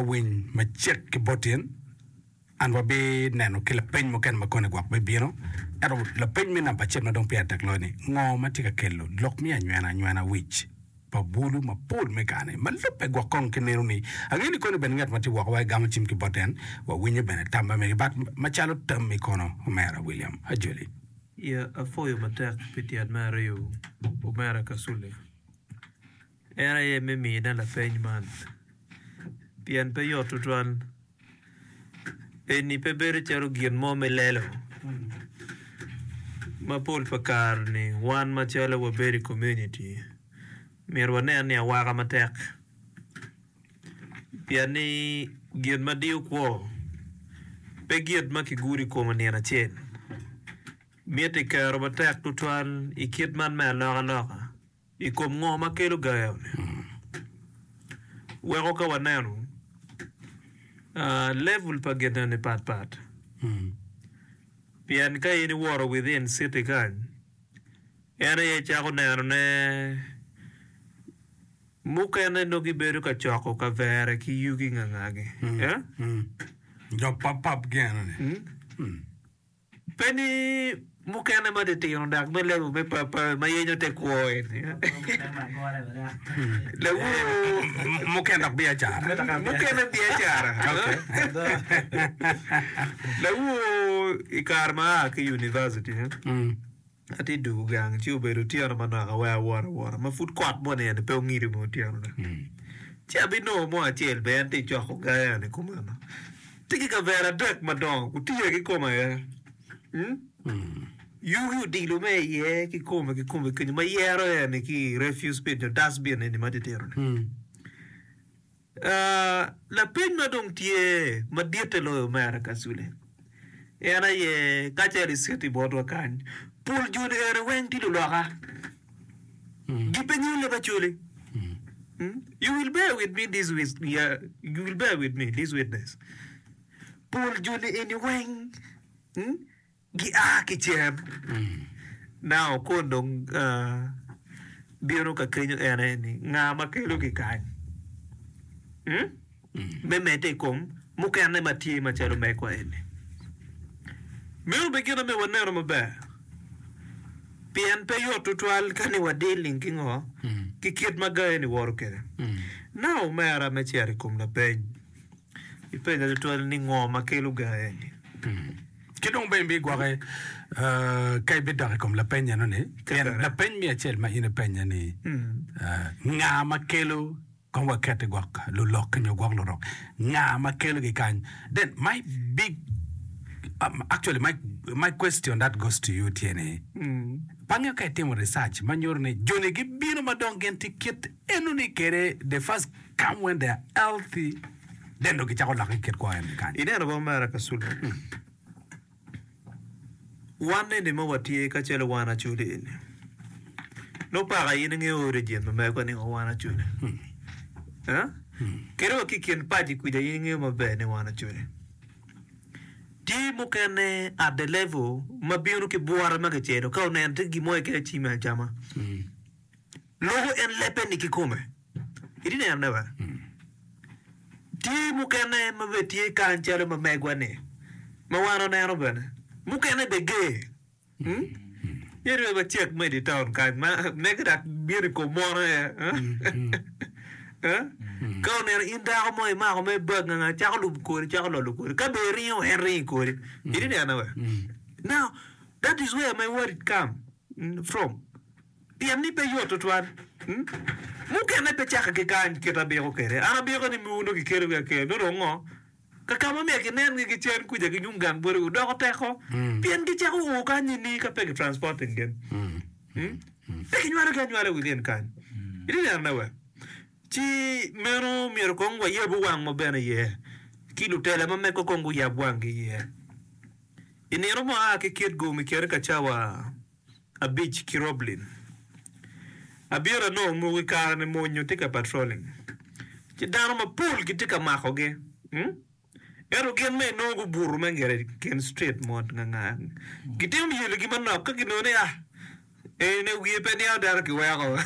Awiny macek ki boti en, an wabi neno ki lapeny mukene ma koni gwok bi bino. Ento lapeny me namba acel ma dong pire tek loyo ni, ngo ma tye ka kelo lok miyo anywena anywena wic pa bulu ma pol me gaa ni? Ma lubbe gwok kong ki nino ni, angeyo ni koni bene ngat ma tye woko wa egamo cim ki bot en, wa winyo bene tamba mege bat ma calo tammi kono omera William Ajoli. Iya apwoyo matek pi tyet me ariyo omera Kasule. En aye me miyina lapeny man, pien pe yot tutwal. Eni pe bedo calo gin mo me lelo ma pol pa kare-ni wan macalo wabedo i komuniti myero wanen ni awaka matek, pien ni gin ma diyo kwo pe gin ma kigudo i kome nino acel. Miti kero matek tutwal i kit man me alokaloka. I kom ngo ma kelo gayo-ni? Weko ka wanenu level pa gin eni pat pat. Pien ka in iwoto within city kany, en aye icako neno ne mukene nongo gibedo ka coko kavere ki yugi ngangagi. Dok pap pap gin eni. Pe ni mukene ma titino dok me level me papawe ma yenyo te kwo eni. Lawur mukene dok biacara mukene biacara. Lawur i kare ma aa ki University. Atye dwogo gang, ci obedo otyeno manok, awero awot awota ma pud kot mo nino-ni pe ongido me otyeno-na. Ci abinongo mo acel bene en tye ka coko gayane kumeno. Tye ki kavera adek madongo gutiya ki kome aye. Yugi odilo me iye ki kome ki kome kenyu ma yero en-ni ki refuse bin nyo dustbin eni matitino-ni. Lapeny ma dong tye maditte loyo mere ka cule en aye ka ce liciti botwa kany, pol joni eni weng tye luloka. Gi pe nyulle ba culi. You will bear with me this with ya you will bear with me this witness pol joni eni weng. Gia ki cen, nao kong dong bino ka kenyo en aye ni, Nga ma kelogi kany? Me medde i kom mukene ma tye macalo megwa eni, meno bene gin amiyo waneno maber, pien pe yot tutwal ka ni wadiling ki ngo ki kit ma ga eni woto kwede. Nao omera me cito i kom lapeny. Ipenye tutwal ni, 'Ngo ma kelo gange-ni? Ki dong bene bigwoke ka ibidok i kom lapeny enoni. Pien lapeny me acel ma in ipenye ni, Nga ma kelo kong wakette gwok lulok-ki nyo gwok lurok? Nga ma kelogi kany? Then my big, actually my, my question that goes to you tye ni, pa angeyo ka itimo research ma nyuto ni joni gibino ma dong gin tye kit Eno ni kede the first come when they are healthy then dong gicako lake ki kit kwo en kany. Ineno bong mera Kasulo ni wan eni ma watye kacel wan Acholi eni nongo paka in inge origin ma mego ni wa wan Acholi eh? Kadi wa ki i kin paci kwica in ingeyo maber ni wan Acholi. Tye mukene at the level ma bino ki bwore ma kicelo ka oneno tye gin mo keken acim en cama. Loko en lebbe ni kikome. Itye nenone be? Tye mukene ma bene tye kany calo ma megwa-ni, ma wan waneno bene. Mukene bene ger. Hmm? Ye dong wacek ma idi taun kany ma mege dok bino i kom mono aye. Eh? Eh? Ka oneno in dako mo imako mere bag nganga cako lubo kodi, cako lolo kodi. Ka bene iringo en ringo kodi. Itye nenone be? Now, that is where my worried come hmm, from. Pien ni pe yot tutwal. Mukene pe cakke ki kany kit abiko kwede. An abiko ni miwu nongo kikelo wi aker me rok ngo, ka ka ma myero kinen gi gicen kuca ki nyung gang boti wu doko teko, pien gicako ur kany ni ni ka pe ki transporting gin, pe ki nywalo gi anywala i wi gin kany. Iti neno ne wek ci meno myero kong wa yabu wang wa bene iye, ki lutela ma mege kong gu yab wang gi iye. I nino mo a ki kit gu mi kene ka cawa. abic ki Roblin. Abiro anongo omoko i kare-ni mony nyo tye ka patrolling, ci dano mapol gitye ka makogi. Ento gin ma inongo gubuto me ngete i kin strit mot ngangar-ni, gitimo myeligi manok ka ginongo ni, Ah, eni-ni wiye pe niang dano kiweko.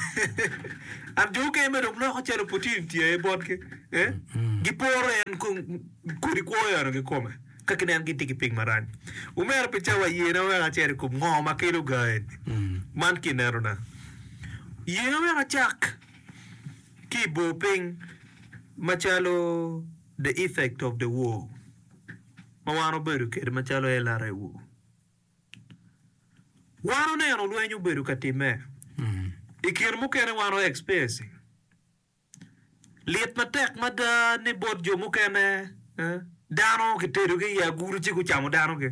Ento jo mukene mere dong loko calo opportunity aye botgi. Giporo en kodi kwo onyo kikome. Ka ginen gitye ki pig marac, omera pi cawa yena wek acit i kom ngo ma kelo gaen man ki inenona. Yena wek acak ki i bor piny macalo The Effect of the War ma wan obedo kede macalo LRA War. Wan oneno lweny obedo ka time, i kin mukene wan o experiencing. Lit matek mada ni bot jo mukene, dano kitedogi i agulu ci gucamo danogi.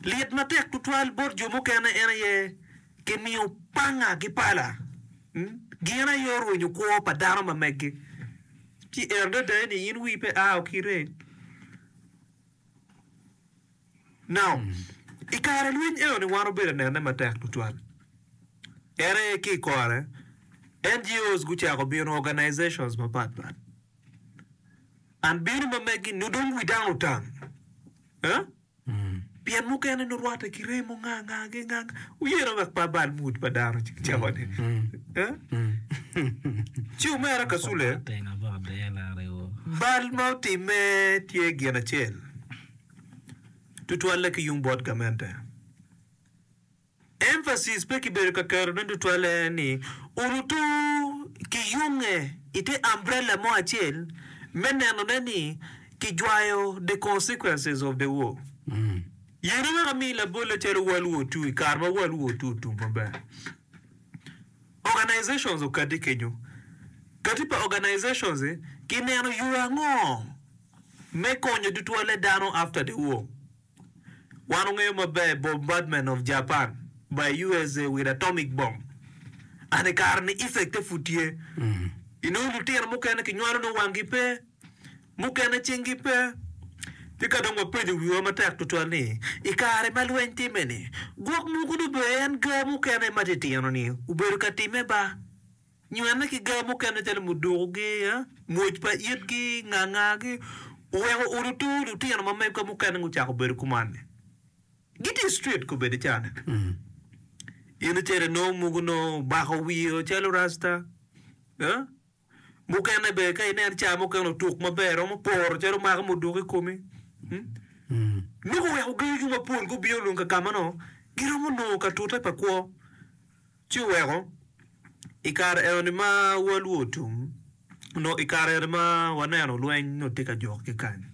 Lit matek tutwal bot jo mukene en aye kimiyo panga ki pala, gin aye orwenyo kwo pa dano ma megi. Ci en adada ni in wii pe ao kite. Naum. I kare lweny enoni wan obedo anene matek tutwal. En aye ki i kore, NGOs gucako bino, organizations mapat pat. And bino ma megi nyo dong wi dano otam. Huh? Pien mukene nurwatte ki remo nga nga gi nga nga. Wuyene wek pe abal mood pa dano ci kicako ni. Huh? Ci omera Kasule, bal ma otimme tye gin acel. tutwalle ki yung bot gamente. Emphasis pe kibedo ka keto ni tutwalle en ni orutu ki yunge i te umbrella mo acel me nenone ni kijwayo the consequences of the war. Yene wek ami labolle calo World War Two i kare ma World War Two otum maber. Organizations okadde kenyo. Kati pa organizations-i gineno yo ango me konyo tutwalle dano after the war. Wan ongeyo maber bombardment of Japan by usa with atomic bomb and ikare ni effect e pud tye. Inongo lutino mukene kinywalo nongo wangi pe, mukene cingi pe. Tika dong wapenyo wiwa matek tutwal ni ikare ma lweny time ni gwok mogo nongo bene en gaa mukene matitino ni obedo ka time ba? Nywene ki gaa mukene calo muduku gi mwoc pa it ki ngaa ngaa gi oweko uru to lutino ma mego ka mukene ngu cako bedo kuman ni gi tye street ko bedi caa ne in icele noo mugu noo obako wiye o calo rasta eh mukene be ka ineno caa mukene otuk maber romo poro calo mako muduku i komi nongo oweko gagi mapol gubino dong ka kama noo gi romo noo ka tute pa kwo. Ci oweko i kare enoni ma walwu otum, onongo i kare eni ma waneno lweny nongo tye ka jok ki kany.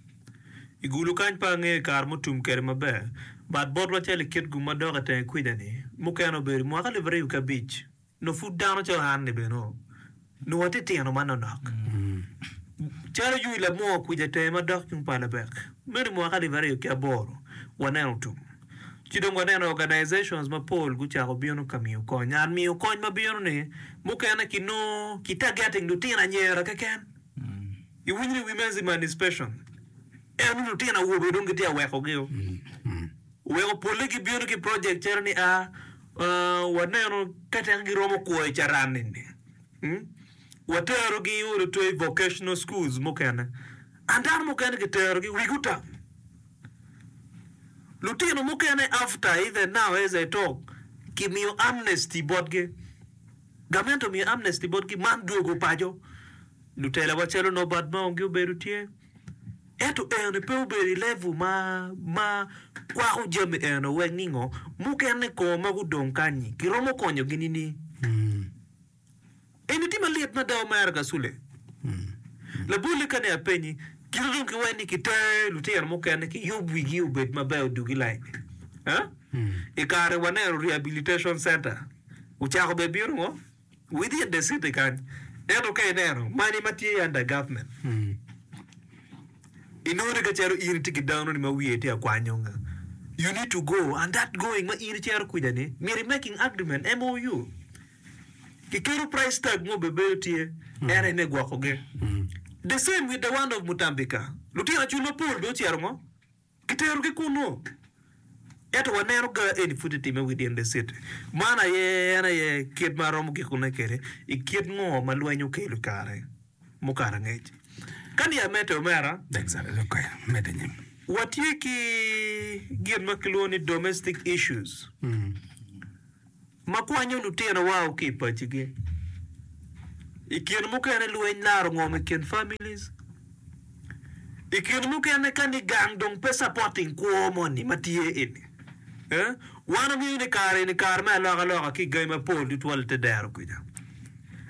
I gulu kany pe angeyo i kare mutum kede maber but bot macalo i kit gu ma dok i tenge kwica ni mukene obedo mwaka alip aryo ki abic nongo pud dano calo an ni bene nongo Nongo atitino manonok calo Yuc Lamor kwica tenge madok tung pa Lebek. Meno i mwaka alip aryo ki aboro, waneno tum. Ci dong waneno organizations mapol gucako bino ka miyo kony. Ngat miyo kony ma bino-ni mukene kinongo ki targeting lutino anyera keken. Iwinyo ni Women's Emancipation eno ni lutino awobe dong gitye ka wekogio. Oweko polle gibino ki project calo ni a waneno ka tek giromo kwo i carani ni, waterogi wot otwe i vocational schools mukene. An dano mukene kiterogi wigi otam. Lutino mukene after even now as I talk kimiyo amnesty botgi. Gamente omiyo amnesty botgi man dwogo paco. Lutelawa calo Norbert Mao ngi obedo tye. Ento en pe obedo i level ma ma kwako jami eno wek ningo mukene kong ma gudong kanyi kiromo konyogi nining? Eni tye malit mada omera Kasule. Labolle kani apenyi kite dong ki wek ni kitere lutino mukene kiyub wigi obed maber odugi lain eh? I kare waneno rehabilitation center ocako bene bino ngo? Within the city kany ento ka ineno money ma tye under government inongo ni ka calo in itye ki dano ni ma wiye tye akwanyo nga you need to go and that going ma in icito kwica ni myero i making agreement, MOU, ki keto price tag mo bene bedo tye en aye me gwoko gi. The same with the one of Mutambika, lutino cul mapol dong ocito ngo? Kiterogi kunnu, ento waneno ga eni pud etimme wi dyen Decit. Man aye en aye kit ma aromo gikone kwede i kit ngo ma lweny okelo i kare mukato angec. Ka niya mete omera, watye ki gin ma kilwongo ni domestic issues. ma kwanyo lutino wa o ki i paci gi. I kine mukene lweny laro ngom i kin families. I kine mukene ka ni gang dong pe supporting kwo moni ma tye eni. Eh? Wan wamiyo ni kare eni kare me aloka loka ki i gangi ma pol tutwal ite dero kwica.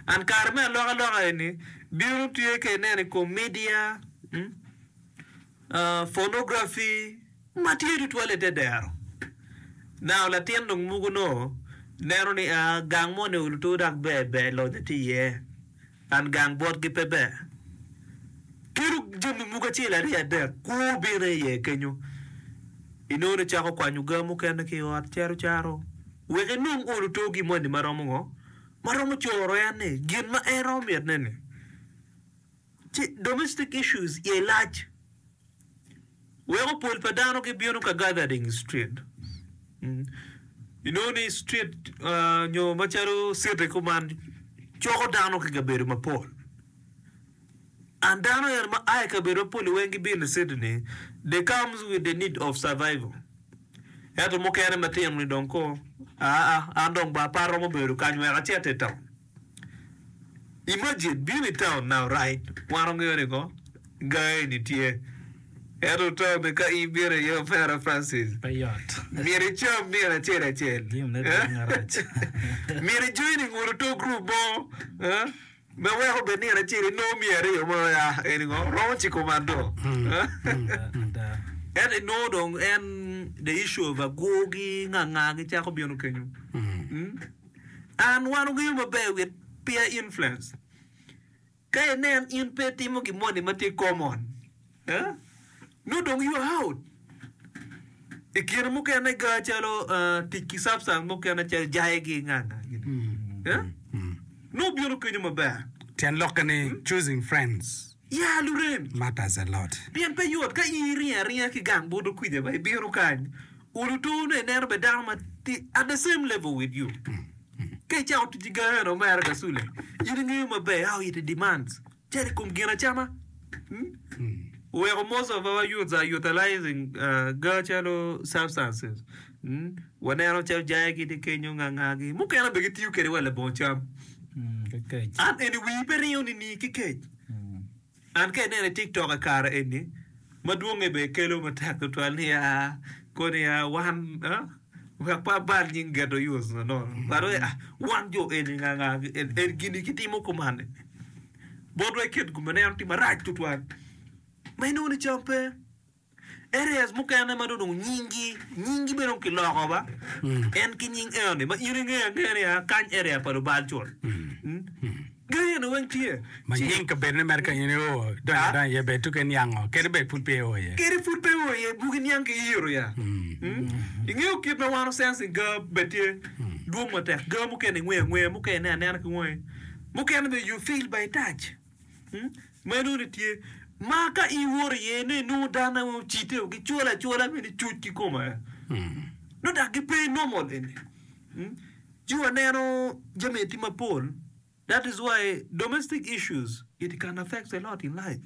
And kare me aloka loka eni bino tye ka ineno i kom media. Hmm? Ponografi ma tye tutwal i te dero. Nano latin dong muku nongo neno ni a gang mo ni oluto dok ber ber lonyo tye iye and gang botgi pe ber. Kelo jami mogo acel aryo adek kwo bino iye kenyo inongo ni cako kwanyo gaa mukene ki ot cito caro wek inong oluto gin moni ma romo ngo? Ma romo coro en ni gin ma en romo mitne ni. Ci domestic issues iye lac weko pol pa dano gibino ka gathering i street. Inongo ni street nyo macalo city kuman coko dano ki kabedo mapol and dano eni ma a i kabedo mapol-li weng gibino i city ni they comes with the need of survival ento mukene matino-ni dong koo aa an dong ba apa aromo bedo kany wek acit i town. Imagine bino i town now right wan wangeyo ni ngo gaa eni tye ento town ni ka in bino iye opera Francis myero icam myero acel acel myero ijoin i ngolo to group mo ma weko bed nino acel inongo miya aryo ma ya eni ngo romo ciko mado ento inongo dong en the issue of agur ki nganga gicako bino kenyo. An, wan wangeyo maber wit peer influence. Ka inen in pe itimo gin moni ma tye common, eh, nongo dong you are out. I kine mukene ga calo ah, tic ki substance mukene calo jaye gi nganga gini. Eh? Nongo bino kenyo maber. Tyen lokke ni choosing friends. Ya lurem, matters a lot, pien pe yot ka in iringo aringa ki gang buto kwica ma ibino kany, olo tor nongo ineno bene dano ma tye at the same level with you. Ka icako tic ki gangi onongo mere ka Sule, in ingeyo maber how it demands calo i kom ginacama. Oweko most of our youths are utilising gaa calo substances. Waneno calo jaye gitye kenyo ngangagi mukene bene gitiyo kwede wa labongo cam ki kec. An eni wii pe ringo nining ki kec? An ka ineno i tiktok i kare eni madwonge bene ikelo matek tutwal niya koni aa wan wek pe abal nying geto us na nono but wai ah wan jo eni nganga eni gini kitimo kumani botwa iket gum ma ineno tye marac tutwal ma inongo ni cam pe. Areas mukene ma dong nyingi nyingi bene dong kiloko ba en ki nying eo ni ma in ingeyo angeya ni aa kany area pa lubal col. Gari eno weng tye. Ma Ci- nying kabedo ni mere ka in io donyo Ah. adanya iye bed tuke niango kadi bed pud pe io iye. Kadi pud pe o iye bugi niang ki yiro ya. Mm. Ingeyo kit ma wano sensing ga bed tye dwong matek. Ga mukene ingweyo angweya, mukene ineno anena ki wangi. Mukene bene you feel by touch. Meno ni tye ma ka in iwoto iye ni inongo dano aye ocitte o gicwolo acwola me ni cuc ki kome aye. No dok gipe normal eni. Mm. Ci waneno jami aye tye mapol. That is why domestic issues it can affect a lot in life.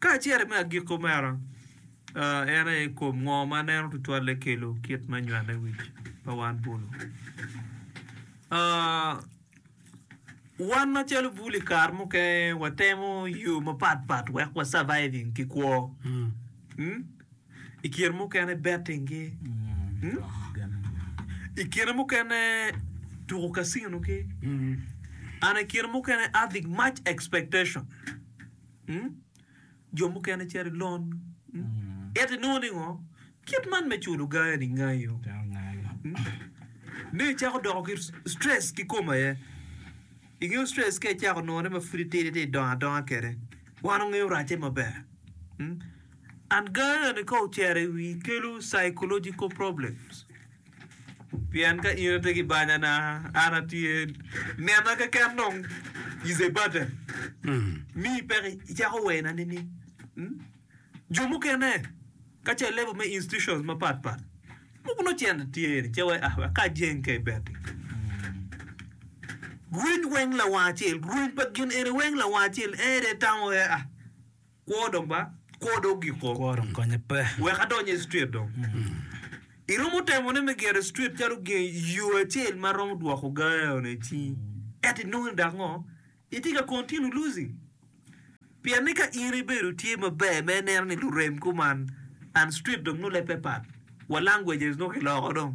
Kacel me agikki meno en aye kom ngo ma neno tutwalle kelo kit me nywane wic pa wan bulu. Wan macalo bulu i kare mukene watemo yo mapat pat wek wa surviving ki kwo. I kine mukene betting-gi. I kine mukene tuko casino-gi. An i kine mukene having much expectation. Mm? Jo mukene cito i lon. Mm? Ento inongo ni ngo? Kit man me culo gaye ni ngayo. Ni icako doko ki stress ki kom aye. Ingeyo stress ka icako none ma pud itidi ti idongo adonga kede. Wan ongeyo racce maber. Mm? Anxiety-ni ka ocito i wii kelo psychological problems pien ka in atye ki banya na an atye nena keken dong is a burden mii peko icako wena nining? Jo mukene ka ce level me institutions mapat pat mogo nongo cente tye ni ce wai ah wek ka ajeng ka ibeddi rweny weng lawang acel rweny pa gin eni weng lawang acel en aye itamo wai ah Kwo dong ba, kwo dong ogiko. Kwo dong konye pe. Wek adonye i street dong. Iromo temo ne me gero street calo gen yo acel ma romo dwoko gayo ne ci eto inongo ni dak ngo? Itye ka continue losing. Pien ni ka in ibedo itye maber me ineno ni lurem kuman and street dong nongo leb pe pat wa languages nongo kiloko dong.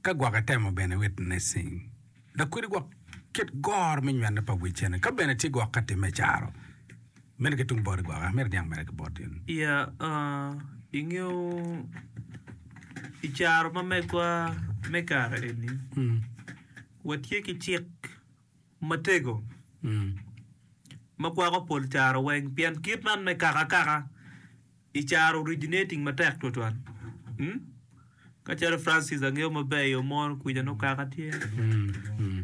Ka gwok itemo bene witnessing, dok kwedi gwok kit goro me nywene pa wicene. Ka bene tye gwok ka timme i caro, mene ki tung boti gwok, eka myero iniang mere ki boti. Ya, uh, ingeyo, i caro ma megwa me kare eni, watye ki cik matego ma kwako pol caro weng pien kit man me kaka akaka i caro originating matek twatwal ka calo Francis angeyo maber i yo mo kwica nongo kaka tye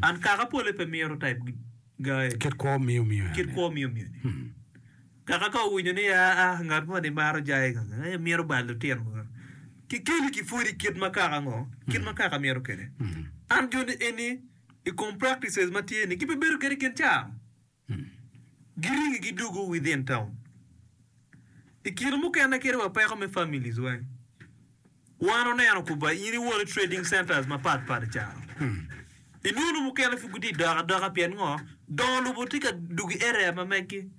and kaka pole pe mito type gae Kit kwo miyo miyo kit yani. kwo miyo miyo ni kaka ka owinyo ni aa ngat mo ni maro jaye kaka ee mito bal lutino kaka kikeli ki pwodi kit ma kaka ngo kit ma kaka mito kede an joni eni i kom practices ma tye ni gipe bedo gadigen ca giringi gidugu within town. I kine mukene kit wa peko me families wa wan oneno kuba in iwone trading centers mapat pat i caro inwono mukene pud gitye dok adoka pien ngo dongo lobo tye ka dugu i area ma megi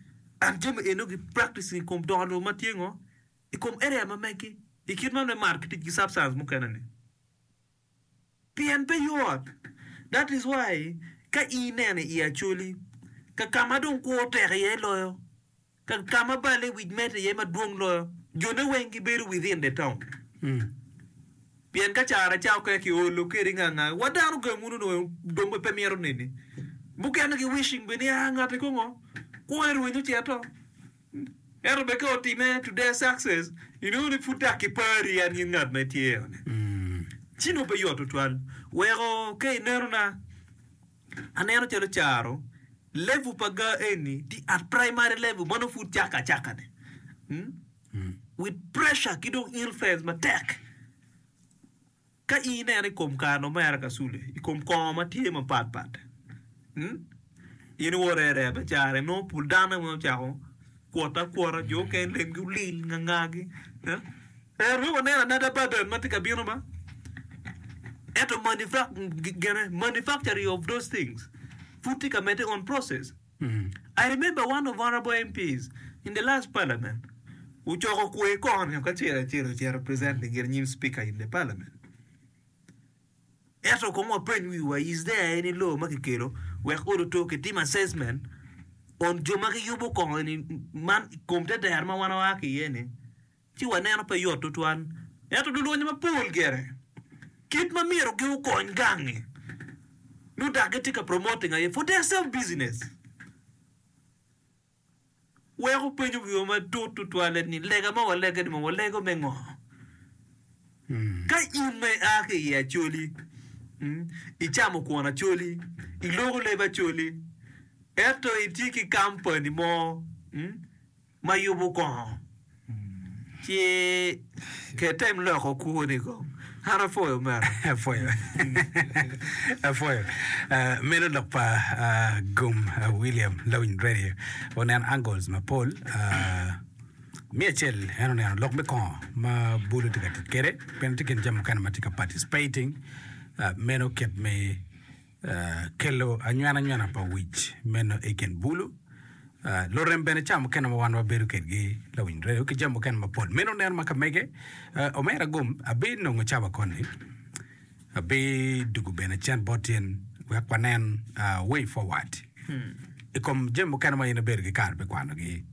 and jami eno gi practice i kom dongo lobo ma tye ngo i kom area ma megi i kit man me mark ki tic ki substance mukene ni. Pien pe yot. That is why ka ineno i Acholi, kakama dong kwo tek iye loyo, kakama bal i wic mete iye madwong loyo, jone weng gibedo within the town. Pien ka cara ca oke ki olo keri nga nga, wa dano gang wunu nongo dong bene pe mito neni. Mukene gi wishing bene ni aa ngati kongo kwo ni rwenyo cito. Ento bene ka otimme to their success, inongo ni pud dok kipari en gin ngat ma itye-ni. Ci nongo pe yot tutwal. Weko ka inenona, aneno calo caro level pa ga eni tye at primary level ma nongo pud cakka acakka-ni with pressure ki dong influence matek. Ka in ineno i kom kano me Araka Sule i kom kongo ma tye mapat pat, in iwore aree bene carre. Nongo pol dano weng ocako kwotte akwota, jo mukene lemgi olil ngangagi. Ento wek wanen anada Babel ma tye ka bino ma, ento manufacturing of those things pud tye ka medde on process. I remember one of honourable MPs in the last parliament ocoko kwer kong nio kacel acel ocito present i gin nyim speaker in the parliament ento kong wapeny wiwa is there any law ma kikelo wek odo two kitim assessment on jo ma giyubo kong eni man i kom te dero ma wan waa ki iye ni Ci waneno pe yot tutwal, ento lulwonye mapol gire kit ma myero gi okony gangi nyo dok gi tye ka promoting aye for their self business. Wek wupenyo wiwa matut tutwale ni lega ma walege ni mo walego me ngo? Ka in ma i a ki i Acholi, i camo kwon Acholi, i loko leb Acholi, ento i tye ki company mo, ma yubu kongo ci ke tem loko kuku ni kong an apoyo meno. Apwoyo. Apwoyo. Ah, meno lok pa ah, Gum ah, William Lawiny Radio. Oneno angles mapol. Ah, me acel en oneno lok me kongo ma bulu tye ka tic kwede. Bene tye gin jami mukene ma tye ka participating. Ah, meno kit me Kelo anywananywana pa wic meno i kin bulu. Lurem bene ca mukene ma wan wabedo kedgi lawiny redio ki jami mukene mapol. Meno neno ma ka mege, omera gum abinongo cawa koni, abidugu bene cen bot cen wek wanen way forward i kom jami mukene ma in ibedo ki kare me kwanogi.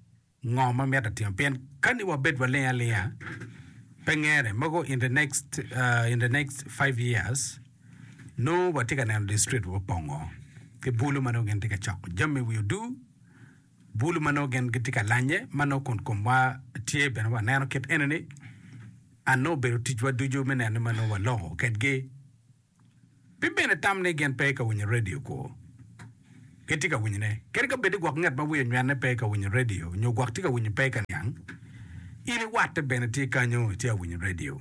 Ngo ma myero atim? Pien kani wabed waling alinga pe ngene mogo in the next in the next five years nongo watye ka neno the street wa opongo ki bulu ma nongo gin tye ka coko jami wi odu bulu ma nongo gin gitye ka lanye ma nongo kun komwa tye bene wa neno kit enini and nongo obedo ticwa ducu me neno ni ma nongo waloko kedgi Pi bene tam ni gin pe ka winyo radio kwo. Gitye ka winyone. Kadi ka bed ni gwok nget ma wiye onywene pe ka winyo radio nyo gwok tye ka winyo pe ka niang, in iwatte bene tye kanyo itye a winyo radio.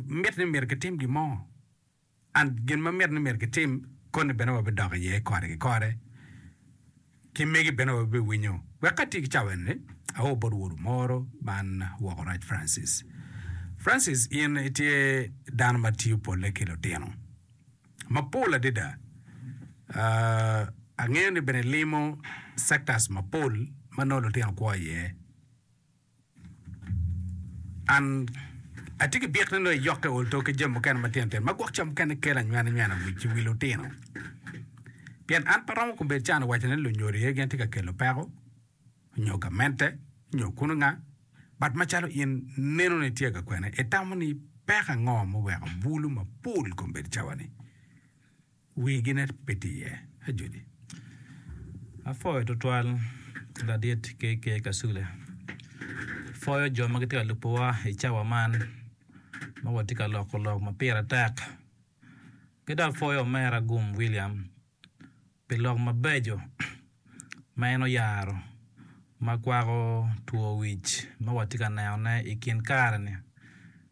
Mit ni myero kitim gin mo. And gin ma mit ni myero kitim, koni bene wabidok iye kore ki kore. ki megi bene wabiwinyo. Wek atye ki cawa enini, aor bot wodu moro man woko rac Francis. Francis, in itye dano ma tiyo polle ki lutino mapol adada. Angeyo ni bene ilimo sectors mapol ma nongo lutino kwo iye. An atye ki byek ni nongo iyokke olto ki jami mukene matino tino ma gwok ca mukene kelo anywenanywena wic i wi lutino. Pien an pe aromo kombeddi can waco ni lunyodo iye gin tye ka kelo peko, nyo gamente, nyo kuno nga, but macalo in neno ni tye ka kwene, itamo ni peko ango muweko bulu mapol kombeddi cawa ni? Wigi ne pe tye iye ajoli. Apwoyo tutwal ladit KK Kasule. Pwoyo jo ma gitye ka lubowa i cawa man ma watye ka loko lok ma pire tek. Ki dok apwoyo omera Gum William pi lok mabeco ma en oyaro ma kwako two wic ma watye ka nenone i kin kare-ni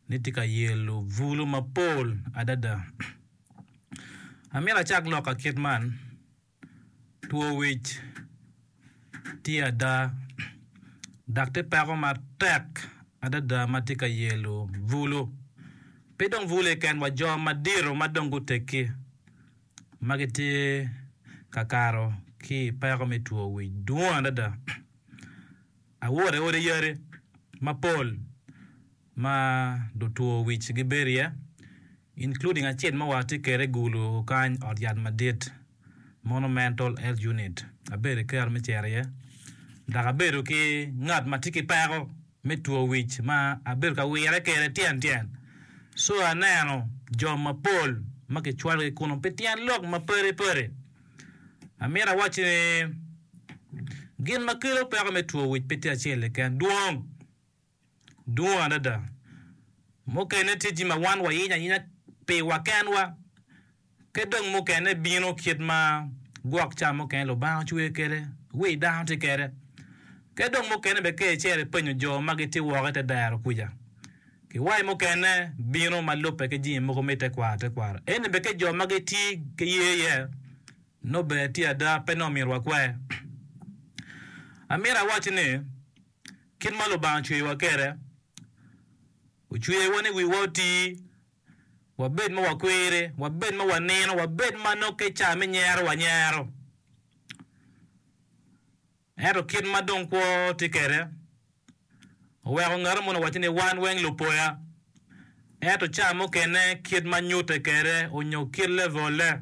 ni tye ka yelo bulu mapol adada. Amito acak lok ka kit man, Two wic tye ada, dok tye peko matek adada ma tye ka yelo bulu. Pe dong bulu keken wa, jo madito ma dong guteggi ma gitye ka kato ki i peko me two wic dwong adada. Awoto i odi yati mapol. ma lutwo wic gibedo iye, including acel ma watye kwede i Gulu kany, ot yat madit, monumental health unit, abedo ki kero me cito iye dok abedo ki ngat ma tye ki peko me two wic ma abedo ka wire kwede tyen tyen. Co aneno jo mapol ma kicwalogi kunnu pi tyen lok mapadi padi. Amito awacci ni gin ma kelo peko me two wic pe tye acel keken, dwong. dwong adada. Mukene tye jami ma wan wayenyo ayenya piwa kenwa, ki dong mukene bino kit ma gwok ca mukene Lubanga ocweyo kwede, wi dano tye kwede. Ki dong mukene bene ka icito ipenyo jo ma gitye woko i te dero kuca, kiwaci mukene bino ma lubbe ki jami mogo me tekwaro tekwaro. Ento bene ka jo ma gitye ki ye iye, nongo bene tye ada, pe nongo myero wakwer. Amito awacci ni. Kit ma Lubanga ocweyowa kwede, ocweyowa ni wiwa oti, wabed ma wakwiri, wabed ma wanino, wabed ma nongo ka i cawa me nyero wanyero. Ento kit ma dong kwo tye kwede, oweko ngat moni owacci ni wan weng lupoya. Ento cawa mukene kit ma nyutte kwede nyo kit levolle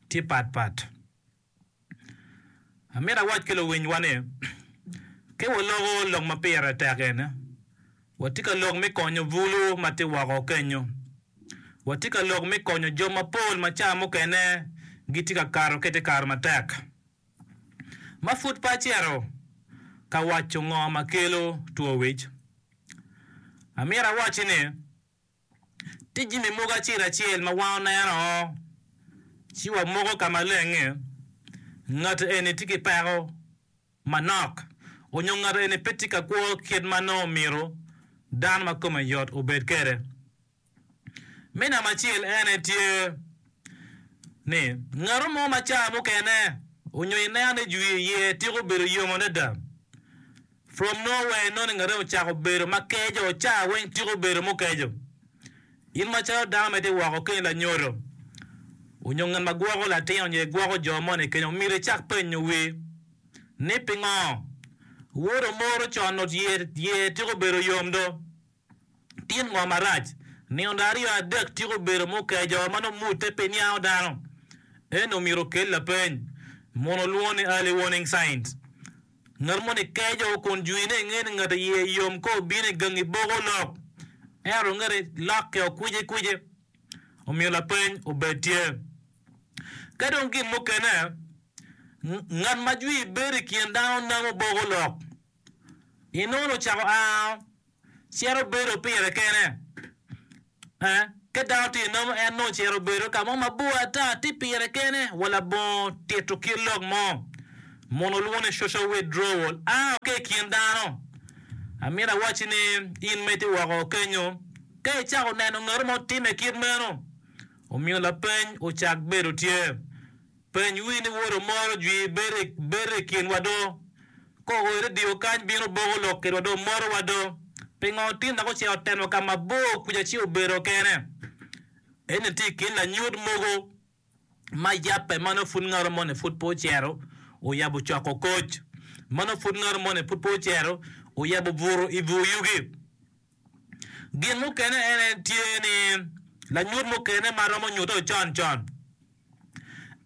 tye pat pat. Amito awac ki luwinywa ni, ka waloko lok ma pire tek eni, watye ka lok me konyo bulu ma tye woko kenyo. Watye ka lok me konyo jo mapol ma cawa mukene gitye ka kato ki i te kare matek. Ma pud pe acito ka waco ngo ma kelo two wic, amito awacci ni, tye jami mogo acel acel ma wan oneno ci wamoko ka malenge, ngat eni tye ki peko manok nyo ngat eni pe tye ka kwo kit ma nongo omyero dano ma kome yot obed kwede. Me namba acel en aye tye ni ngat mo ma cawa mukene onyo ineno ni jwi iye tiko bedo yom adada From nowhere noningere ocako bedo ma keco, caa weng tiko bedo mukeco. In macalo dano ma itye woko keni lanyodo, onyo ngat ma gwoko latin onyo igwoko jo mo ni keco omyero icak penyo wi ni pingo? Wodo moro con nut yer tiko bedo yom do. Tin ngo marac nino aryo adek tika obedo ma okeyo jo ma nongo mute pe niango dano? Eni omyero okel lapeny. Munu olwongo ni early warning signs. Ngat moni keyo jo kun jwine inge ni ngat iye yom ka obino i gangi boko lok. Ento ngete lokke o kwici kwici. Omyero lapeny obed tye. Ka dong gin mukene, ngat ma jwi bedo i kin dano namo boko lok. Inongo ni ocako a. cito bedo pire kene. Ka dano tye nomo, en nongo cito bedo ka mo mabor ata, tye pire kene, wa labongo tito kit lok mo, mono olwongo ni social withdrawal, a ki i kin dano. Amito awacci ni, in ma itye woko kenyo, ka icako neno ngat mo timme kit meno, omiyo lapeny ocak bedo tye. Peny wi ni woto moro jwi bere bere i kinwa do. Ko oyo ni dio kany bino boko lok kedwa do moto wa do. Pingo otin dok ocito teno ka mabor kuca ci obedo kene. Eni tye i kin lanyut mogo ma yabbe mano pud ngato moni pud pe ocito oyabo coko koc. Mano pud ngato moni pud pe ocito oyabo buto i bur yugi. Gin mukene en en tye ni lanyut mukene ma romo nyuto con con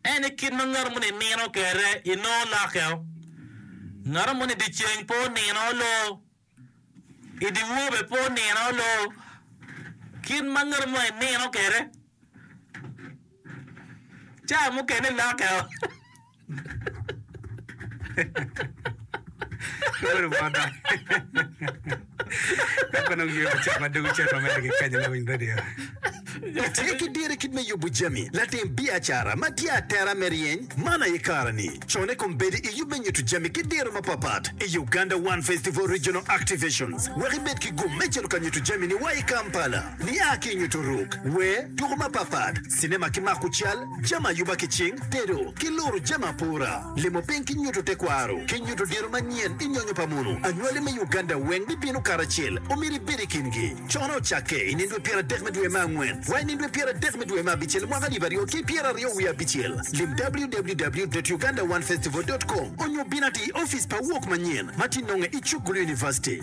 en i kit ma ngato moni i nino kere i noo lokke o. Ngato moni i di ceng pe onino loo, i di wor be pe onino loo, kit ma ngato moni i nino kere. Caa mukene lokke o. Uru bota. Dok onongo yue pa caa ma dwogo cen ma mere kikany na winy radio. Tye ki diro kit me yubu jami latim biacara ma tye atera me ryeny man aye kara ni. Con i kom bedi i yub me nyutu jami ki diro ma pat pat i Uganda One Festival Regional Activations wek ibed ki gum me cito ka nyutu jami ni wa i Kampala. Nia ki i nyuto ruk, wer, tuko mapatpat, cinema ki mako cal, jami ayuba ki cing, tedo, ki luru jami apora, limo piny ki nyuto tekwaro, ki nyuto diro manyen i nyonyo pa munu. Anywali me Uganda weng bibino karacel. Omyero ibed i kingi. Cono ocakke i nindwe pyer adek me dwe me angwen wa i nindwe pyer adek me dwe me abicel mwaka alip aryo ki pyer aryo wiye abicel. Lim www.ugandaonefestival.com onyo bin ati i ofice pa Wok Manyen ma ti nonge i Chukgulu University.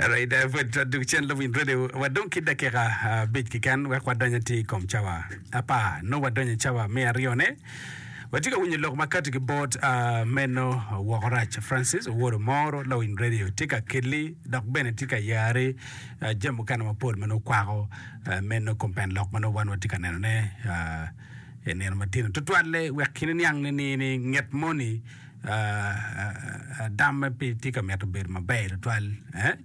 Alright, eh, pwod to duk cen luwiny radio. Wadong ki dakika abic keken wek wadony atir i kom cawa apar. Nongo wadonyo i cawa me aryone. Watye ka winyo lok makato ki bot ah, meno woko rac Francis Owor Omoro lawiny radio tye ka kelli dok bene tye ka yari ah, jami mukene mapol ma nongo kwako ah, meno kompen lok ma nongo wan watye ka nenone ah, i nino matino tutwalle wek kine niang ni ni ni nget moni Adamme pe tye ka mito bedo maber tutwal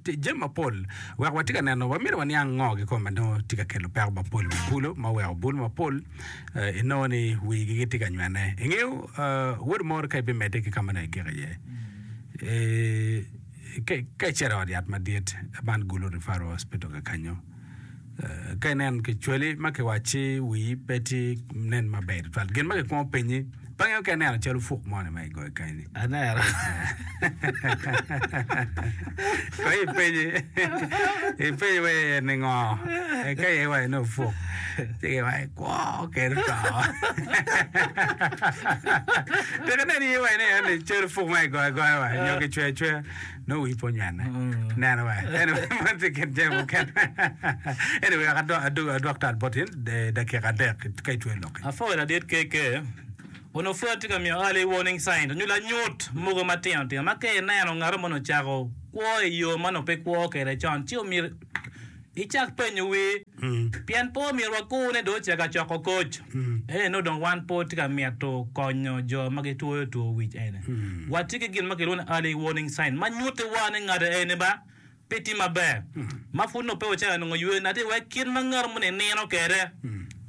i jami mapol. Wek watye ka neno, wamito waniang ngo kikome ma nongo tye ka kelo peko mapol i wi bulu ma oweko bulu mapol inongo ni wigi gitye ka nywene. Ingeyo wod moro ka ibimedde ki ka ma nongo igiko iye, ka icito i ot yat madit man Gulu Referral Hospital kakanyo, ka inen kicweli ma kiwacci wii pe tye nen maber twal gin ma kikwongo penyi pe angeyo ka ineno calo fuk mo ni ma igoyo kany ni aneno kono ipenye ipenye wa iye ni ngo eka iye wa ine ofuk ci ki wa ikwo kene to dok inen iye wa ine ni calo fuk ma igoyo agoya wa nyo kicweyo acweya nongo wi pwonyo ane neno wa tye kit jami mukene anyway wek adwok tal bot in dakika adek ka itweyo loki Apwoyo ladit KK. Onongo pud atye ka miyo early warning signs nyo lanyut mogo matino tino ma ka ineno ngato moni ocako kwo i yo ma onongo pe kwo kwede con ci omyero Icak penyo wi, pien pe omyero wakurne dong ocaka coko koc. Ento nongo dong wan pe watye ka mito konyo jo ma gitwoyo two wic eni. Watye ki gin ma kilwongo ni early warning sign ma nyutiwa ni ngat eni ba pe tye maber, ma pud nongo pe ocako nongo ywe nati iye. Wek kit ma ngato moni nino kwede,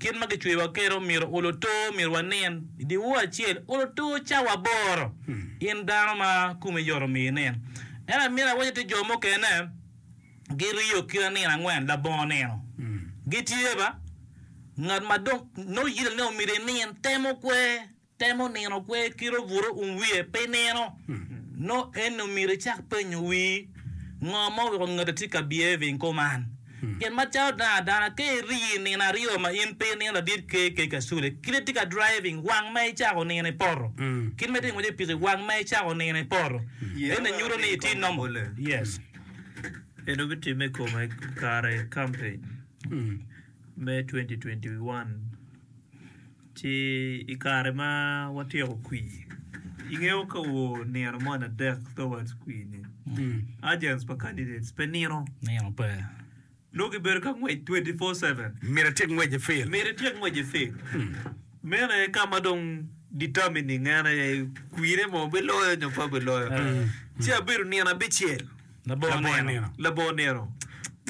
kit ma kicweyowa kwede, omyero olo to myero wanin i dye ur acel, olo to cawa aboro, in dano ma komi yot omyero inin. Ento amyero awacci tye jo mukene, giriyo ki lanin angwen labongo nino. Gitye ba. Ngat ma dong nongo yite ni omyero inin temo kwe, temo nino kwe kit obuto um wiye pi nino. Nongo en omyero icak penyo wii, Ngo ma oweko ngati tye ka behaving kuman? Pien macalo dano adana, ka iriyo i nino aryo ma in pe inino ladit ker ker ka sule, kit ma itye ka driving, wang ma icako nino i poto, kit ma itye ka ngwec ki pikipiki, wang ma icako nino i poto, ento nyuto ni itye normal. Yes. En dong bitimme i kome kare kampeny me 2021 ci i kare ma watyeko kwir. Ingeyo ka wo nino moni adek towards kwir-ni, agents pa candidates pe nino. Nino pe. Nongo gibedo ka ngwec 24-7. Myero atyek ngwec i field. Myero ityek ngwec i field. Meno aye ka ma dong determining en aye kwine mo biloyo nyo pe biloyo. Ci abedo nino abicel. Labongo nino. Labongo nino.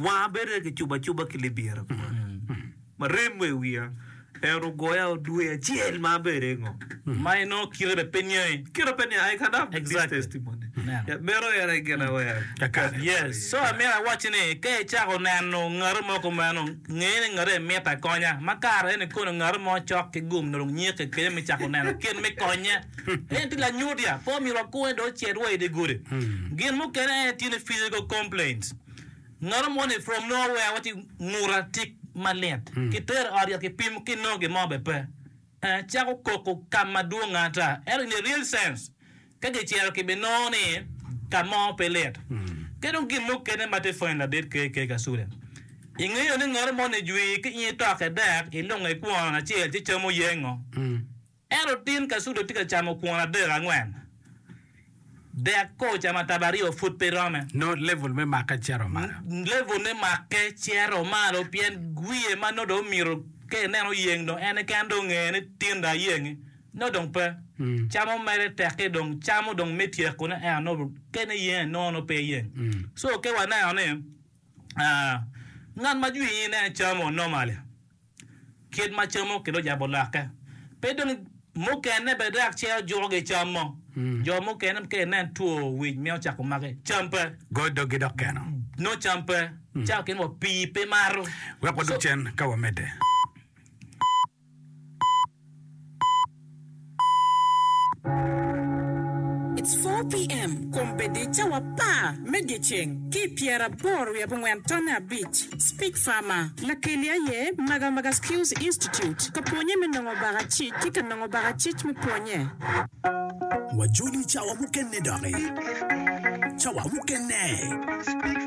Wanga bedo aye kicubo acuba ki libira kunu. ma remo i wiya, en ogoya dwe acel ma abede ngo. Ma inongo kite bene pe niange. Kite pe niange, I can have this Exactly. testimony. Amen. Ya, meno en aye gin awer. Kakare. Yes. So amyero awacci ni ka icako neno ngati mo kumeno, nge ni ngati eni mitte akonya. Ma kare eni kono ngati mo cok ki gum nyo dong nyike kenyo me cako neno kit me konye. En tye lanyutya, pe omyero wakunge dong ocit wa i dye gudi. Gin mukene en tye ni physical complaints. Nono mono i from nongo wea wati nguta tik malit ki tero i ot yat ki pimo ki nongo gin mo be pe eh cako koko kam madwong ata ento in a real sense ka gi cero ki bi nongo ni ka mo pe lit ki dong gin mukene ma te funny ladit ke ke ka sude i ngeyo ni nono mono i jwi ki in itoke dek i lunge kwon acel ci camo yengo. Ento otin Kasudo tye ka camo kwon adek, angwen, dek koo ocamo atabo aryo pud pe rome. Nongo level me makke cito malo. Level me makke cito malo pien wiye ma nongo dong omito ka ineno oyeng dong en keken dong ongeye ni tin dong ayengi nongo dong pe. Camo mere tekke dong camo dong me tyekone ento nongo ka ineno yenge nongo nongo pe yeng. So ka waneno ni ngat ma jwinyi ineno camo normally Kit ma camo ki dong jabo lokke pe dong mukene bene dok ce ojuko gi cam mo. Jo mukene ka inen two wic mito cako maki cam pe. Go dogi dok keno. Nongo cam pe. Cawa kene wa pii pe mato. Wek wadog cen ka wamedde. It's 4 PM Kom bed i cawa apar me dyeceng ki pyera aboro wiye abongwen tonne abic Speak Farmer Lakeli aye Maga Maga Skills Institute Ka pwonye me nongo baka cic ki ka nongo baka cic me pwonye. Wajoli cawa mukene doki. Cawa mukene.